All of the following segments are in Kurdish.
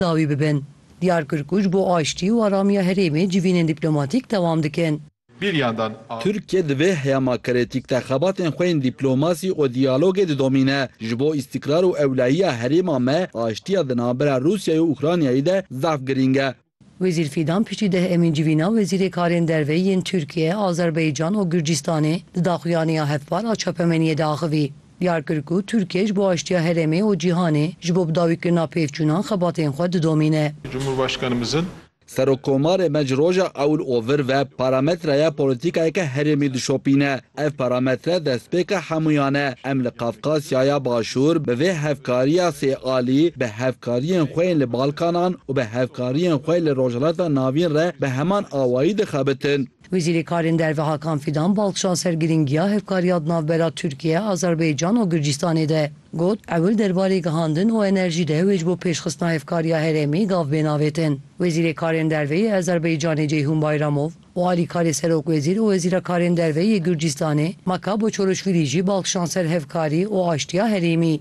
dawî bibin. Diyar kir ku ji bo aştî û aramiya herêmê civînên dîplomatîk dewam dikin. Bêriyan dan a. Tirkiye di vê heyama kritîk de xebatên xwe yên dîplomasî û diyalogê didomîne. Ji bo îstîkrar û ewlehiya herêma me, aştiya di navbera Rûsyayê û Ukraynayê de zaf girîng e. Wezîr Fîdan piştî deh Emîn civîna wezîrê karên derve yên Tirkiye, Azerbaycan û Gurcistanê di daxuyaniya hevpar a çapemeniyê de axivî. Diyar kir ku Tirkiye ji bo aştiya herêmê û cîhanê ji bo bidawîkirina pêvçûnan xebatên xwe didomîne. Cumhurbaşkanımızın. Serokomarê me ji roja ewil û vir ve parametreya polîtîkayeke herêmî dişopîne. Ev parametre destpêka hemûyan e. Em li Qafqasyaya Başûr bi vê hevkariya sê alî, bi hevkariyên xwe yên li Balkanan û bi hevkariyên xwe li Rojhilata Navîn re bi heman awayî dixebitin. Wezîrê Karên Derve Hakan Fîdan bal kişand ser girîngiya hevkariya di navbera Tirkiye, Azerbaycan û Gurcistanê de. Got, Ewil derbarê gihandin û enerjî de wê ji bo pêşxistina hevkariya herêmî gav bên avêtin. Wezîrê Karên Derve yê Azerbaycanê Ceyhun Bayramov û alîkarê Serokwezîr û Wezîra Karên Derve yê Gurcistanê Maka Boçoruşwîlî jî bal kişand ser hevkarî û aştiya herêmî.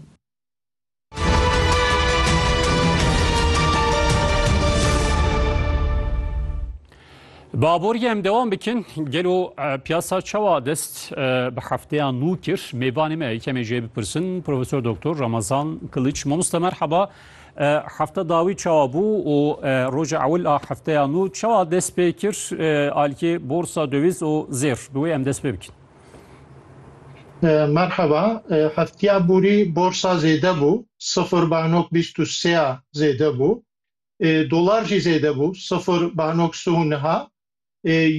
Baborî em dewam bikin gelo piyasa çawa dest bi hefteya nû kir mêvanê me yekemê jê bipirsin Profesor Doktor Ramazan Kiliç Mamosta merheba hefte dawî çawa bû û roja ewil a hefteya nû çawa dest pê kir alîkê borsa döwîz û zêr bi wê em dest pê bikin. Merheba, heftiya borî borsa zêde bû, sifir banok bîst û sê ya zêde bû. Dolar jî zêde bû, sifir banok sih û niha.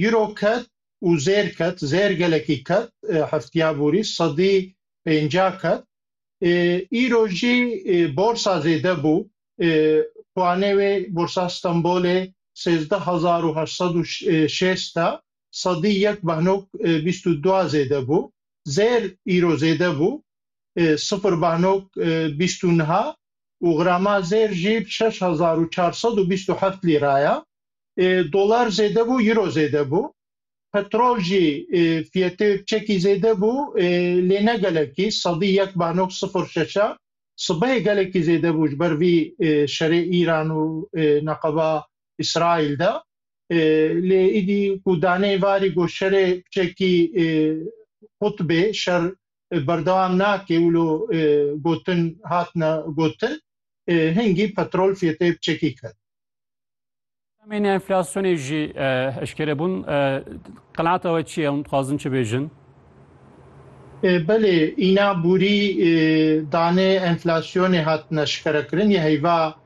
Euro ket û zêr ket, zêr gelekî ket heftiya borî, sedî pênca ket. Îro jî borsa zêde bû, puanê wê borsa Stenbolê sêzdeh hezar û heşt sed û şêst e. sedî yek behnok bîst û dua zêde bû. Zêr îro zêde bû. Sifir behnok bîst û niha û grama zêr jî şeş hezar û çar sed û bîst û heft lîra ya. Dolar zêde bû, îro zêde bû. Petrol jî fiyetê wê piçekî zêde bû lê ne gelekî. Sedî yek behnok sifir şeş a sibehê gelekî zêde bû ji ber vî şerê Îran û neqeba Îsraîl de. Lê îdî ku danê varî got şerê piçekî qutbê, şer berdewam nake, wilo gotin hatine gotin, hingî petrol fiyetê piçekî ket. Demên enflasyonê jî eşkere bûn. Qenaata we çi ye? Hûn dixwazin çi bêjin? Belê, îna borî danê enflasyonê hatine eşkerekirin yê heyva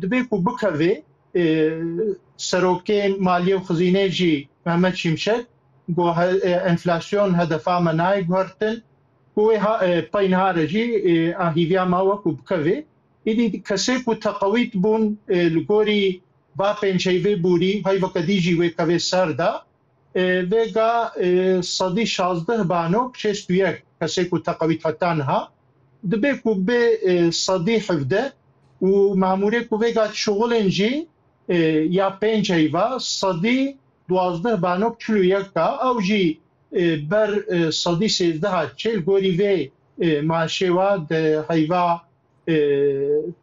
Dibê ku bikeve serokê maliyê û xizînê jî Mehmet Şimşek got enflasyon hedefa me nayê guhertin ku wê pey niha re jî a hîviya me weku bikeve. Îdî kesê ku teqewît bûn li gorî va pênceyvê bûrî heyveke dî jî wê kevê ser de Vêga sedî şazdeh bano bi şêst û yek kesê ku teqewît heta niha dibê ku bê sedî hevdeh û mamûrê ku vêga çixulên jî ya pênc heyva sedî duwazdeh bano bi çil û yek ka ew jî ber sedî sêzdeh a çê li gorî vê maaşê wa di heyva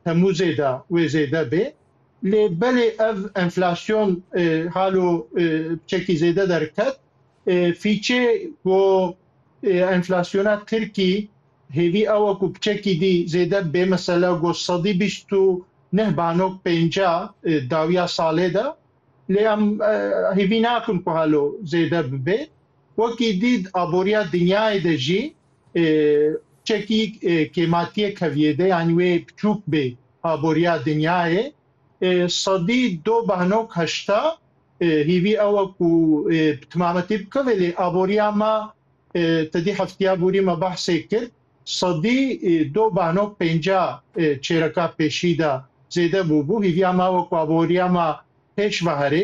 Temmûzê de wê zêde bê. Lê belê ev enflasyon halo çekî zêde derket. Fîçê ku enflasyona Tirkî hêvî ew ku çekî dî zêde bê mesela ku sedî bîst û neh banok pênca dawiya salê de. Lê em hêvî nakin ku halo zêde bibê. Wekî dît aboriya dinyayê de jî Çekî kêmatiyê keviyê de yanî wê piçûk bê aboriya dinyayê. Sedî do behnok heşta hîvî ew e ku bi timametî bike vê lê aboriya me ti dî heftiya borî me behsê kir sedî do behnok pênca çêreka pêşî de zêde bûbû. Hîviya me ew e ku aboriya me pêş ve herê.